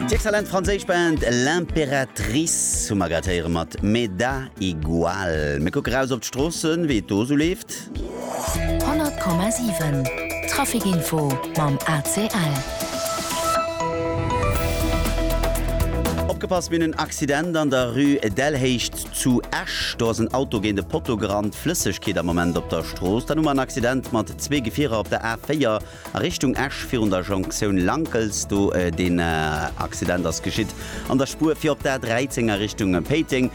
D'exzellent franséisch Band L'Impératrice hu mer grad héiere mat Me da igual. Mir kucke raus op d'Stroossen, wéi et do esou leeft. 100,7 Traficinfo mam ACL. Opgepasst, mir hunn en Accident an der Rue Delhéicht zu Esch. Do ass en Auto géint e Potto gerannt. Flëssegkeet am Moment op der Strooss. Dann hu mer en Accident mat zwee Gefierer op der A4. A Richtung Esch virun der Jonktioun Lankels, do deen Accident ass geschitt an der Spuer fir op d'A 13 a Richtung Péiteng.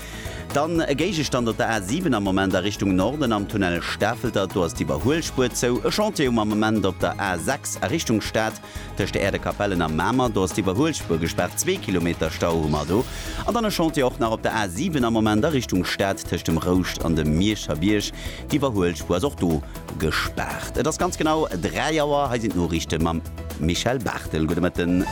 Dann e Géigestand op der A 7 am Moment a Richtung Norden am Tunnel Stafelter, do ass d'Iwwerhuelspuer zou. E Chantier um Ament op der A 6 a Richtung Stad tëscht der Äerdekapellen a Mamer, do ass d'Iwwerhuelspuer gespaart, zwee Kilometer Stau hu mer do. An dann e Chantier och nach op der A 7 am Moment a Richtung Stad tëscht dem Rouscht an dem Mierscher Bierg. D'Iwwerhuelspuer ass och do gespaart. Et ass ganz genau 3 Auer. Hei sinn d'Noriichte mam Michèle Barthel. Gudde Mëtten.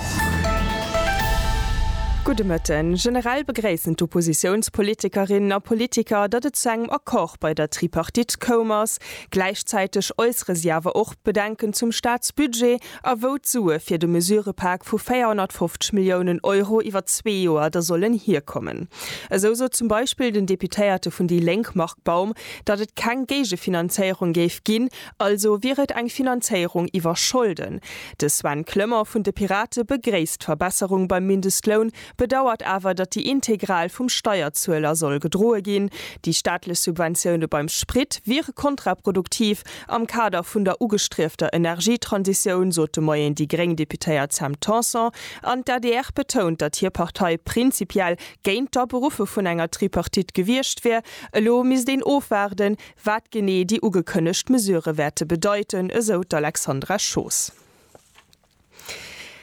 Gudde Mëtten. Generell begréissen d'Oppositiounspolitikerinnen a politiker, datt et zu engem Accord bei der Tripartite koum ass. Gläichzäiteg äussere si awer och Bedenken zum Staatsbudget. a wou d'Sue fir de Mesurëpak vu 450 Milliounen Euro iwwer zwee Joer da sollen hierkommen. Esou sot zum Beispill den Deputéierte vun déi Lénk Marc Baum, datt et keng Géigefinanzéierung géif ginn, also wier et eng Finanzéierung iwwer Scholden. De Sven Clement vun de Pirate begréisst d'Verbesserung beim Mindestloun, bedauert awer, datt déi integral vum Steierzueler soll gedroe ginn. Déi staatlech Subventioune beim Sprit wiere kontraproduktiv am Kader vun der ugestriefter Energietransitioun, sot de Moien déi gréng Deputéiert Sam Tanson. An d'ADR betount, datt hir Partei prinzipiell géint d'Aberuffe vun enger Tripartite gewiescht wier. Elo misst een ofwaarden, wat genee déi ugekënnegt Mesurë wäerte bedeiten, esou d'Alexandra Schoos.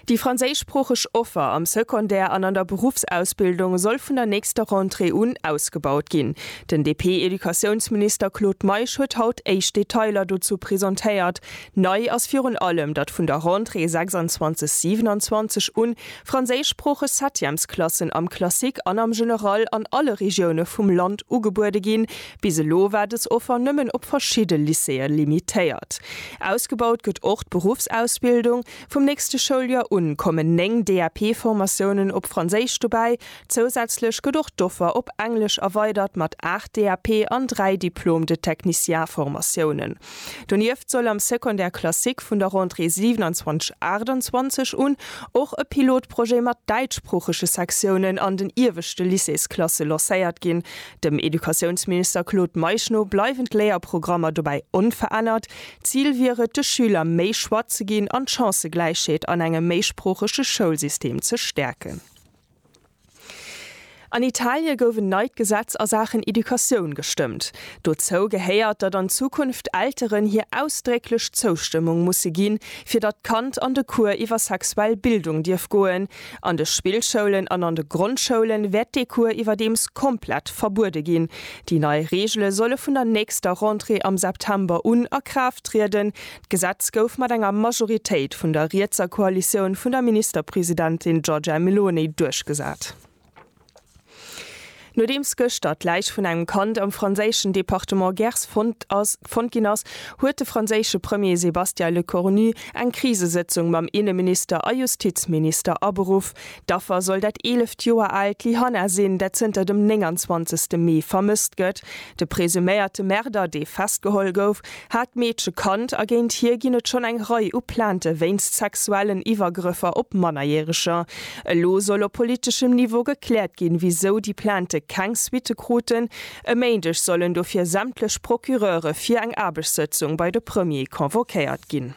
Déi franséischsproocheg Offer am Secondaire an an der Beruffsausbildung soll vun der nächster Rentrée un ausgebaut ginn. Den DP-Educatiounsminister Claude Meisch huet haut éischt Detailer dozou presentéiert. Nei ass virun allem, datt vun der Rentrée 26, 27 un franséischsproocheg Septièmesklassen am Classique an am General an alle Regioune vum Land ugebuede ginn, Bis elo war dës Offer nëmmen op verschidde Lycéeë limitéiert. Ausgebaut gëtt och d'Beruffsausbildung. Vum nächste Schouljoer un kommen 9 DAP-Formatiounen op Franséisch dobäi. Zousätzlech gëtt och d'Offer op Englesch erweidert mat 8 DAP an 3 Diplôme de technicien-Formatiounen. Donieft soll am Secondaire classique vun der Rentrée 27, 28 un och e Pilotprojet mat däitschsproochege Sektiounen an den ieweschte Lycéesklasse lancéiert ginn. Dem Educatiounsminister Claude Meisch no bleiwen d'Léierprogrammer dobäi onverännert. D'Zil wier et, de Schüler méi Choix ze ginn an d'Chancëgläichheet an engem méisproochege Schoulsystem ze stäerken. An Italie gouf en neit Gesetz a Saachen Educatioun gestëmmt. Dozou gehéiert, datt an Zukunft Elteren hir ausdrécklech Zoustëmmung musse ginn, fir datt d'Kand an de Cours iwwer sexuell Bildung dierf goen, An de Spillschoulen an an de Grondschoulen wäert dee Cours iwwerdeems komplett verbuede ginn. Déi nei Reegele solle vun der nächster Rentrée am September un a Kraaft trieden. D'Gesetz gouf mat enger Majoritéit vun der rietser Koalitioun vun der Ministerpresidentin Giorgia Meloni duerchgesat. Nodeems gëschter d'Läich vun engem Kand am franséischen Departement Gers fonnt ginn ass, huet de franséische Premier Sébastien Lecornu eng Krisesëtzung mam Inneminister a Justizminister aberuff. D'Affer soll dat eeleft Joer aalt Lyhanna sinn, dat zënter dem 29 Mee vermësst gëtt. De presuméierte Märder, dee festgeholl gouf, hat d'Meedche kannt a géint hie ginn et schonn eng Rei u Plainte wéinst sexuellen Iwwergrëffer op Mannerjäreger. Elo soll op politeschem Niveau gekläert ginn, wisou déi Plainte keng Suitte kruten. E Méindeg sollen dofir sämtlech Procureure fir eng Aarbechtssëtzung bei de Premier convoquéiert ginn.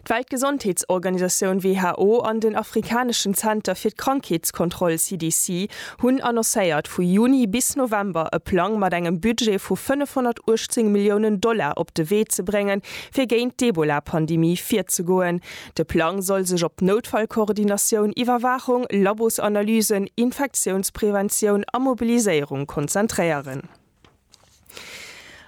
D'Weltgesondheetsorganisatioun WHO an den afrikaneschen Zenter fir d'Krankheetskontroll CDC hunn annoncéiert, vu Juni bis November e Plang mat engem Budget vu 518 Milliounen Dollar op de Wee ze bréngen, fir géint d'Ebola-Pandemie virzegoen. De Plang soll sech op Noutfallkoordinatioun, Iwwerwaachung, Labosanalysen, Infektiounspreventioun a Mobiliséierung konzentréieren.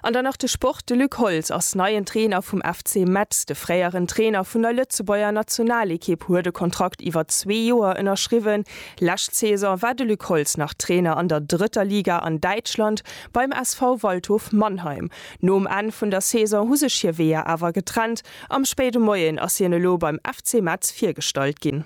An dann nach de Sport, De Luc Holtz ass neien Trainer vum FC Metz. De fréieren Trainer vun der Lëtzebuerger Nationalekipp huet e Kontrakt iwwer zwee Joer ënnerschriwwen. Lescht Saison war de Luc Holtz nach Trainer an der drëtter Liga an Däitschland beim SV Waldhof Mannheim. Nom Enn vun der Saison hu sech hir Weeër awer getrennt. Am spéide Moien ass hien elo beim FC Metz virgestallt ginn.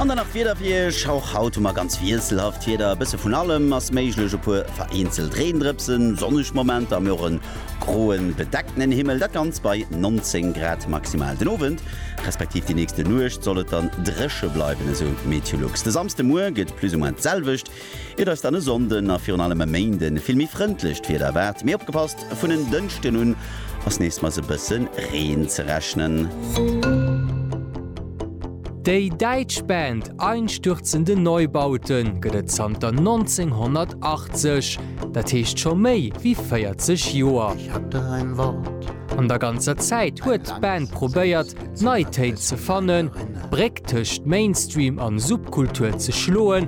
An dann nach d'Wieder fir Iech. Och haut hu mer ganz wiesselhaft Wieder, e bësse vun allem ass méiglech, e puer vereenzelt Reendrëpsen, sonneg Momenter, mee och e groen, bedeckten Himmel, dat Ganzt bei 19 Grad maximal. Den Owend, respektiv déi nächste Nuecht soll et dann dréche bleiwen, esou Meteolux. De Samsdemuer gëtt plus ou moins d'selwecht. Et eis dann e Sonnden a virun allem e Méinden vill méi frëndlecht Wieder erwaart, mee opgepasst, vun en Dënschden un ass nees mais e bësse Reen ze rechnen. Déi däitsch Band Einstürzende Neubauten gëtt et zanter 1980, dat heescht scho méi wéi 40 Joer. An der ganzer Zäit huet d'Band probéiert, nei Téin ze fannen, d'Bréck tëscht Mainstream an Subkultur ze schloen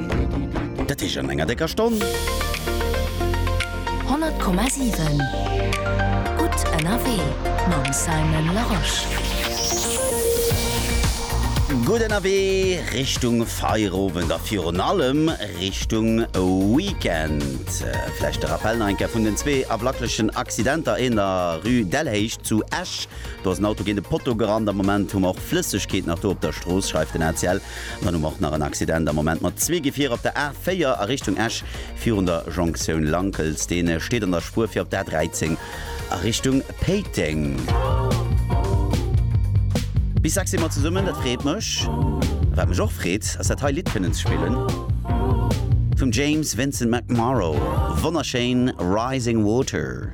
Dat heescht an enger décker Stonn. 100,7 Gutt ënnerwee mam Simon Larosche. Gutt ënnerwee Richtung Feierowend a virun allem Richtung Weekend. Vläicht de Rappel nach eng Kéier vun den zwee awlacklechen Accidenter, een a Rue Delhéicht zu Esch, do ass en Auto géint e Potto gerannt. Am Moment hu mer och Flëssegkeet nach do op der Strooss, schreift den ACL. An dann hu mer och nach en Accident am Moment mat zwee Gefierer op der A4 a Richtung Esch virun der Jonktioun Lankels. Deen steet an der Spuer fir op d'A13 a Richtung Péiteng. Bis sechs si mer zesummen, dat freet mech. A wat mech och freet, ass dat hei Lidd kënnen ze spillen vum James Vincent McMorrow. Wonnerschéin, Rising Water.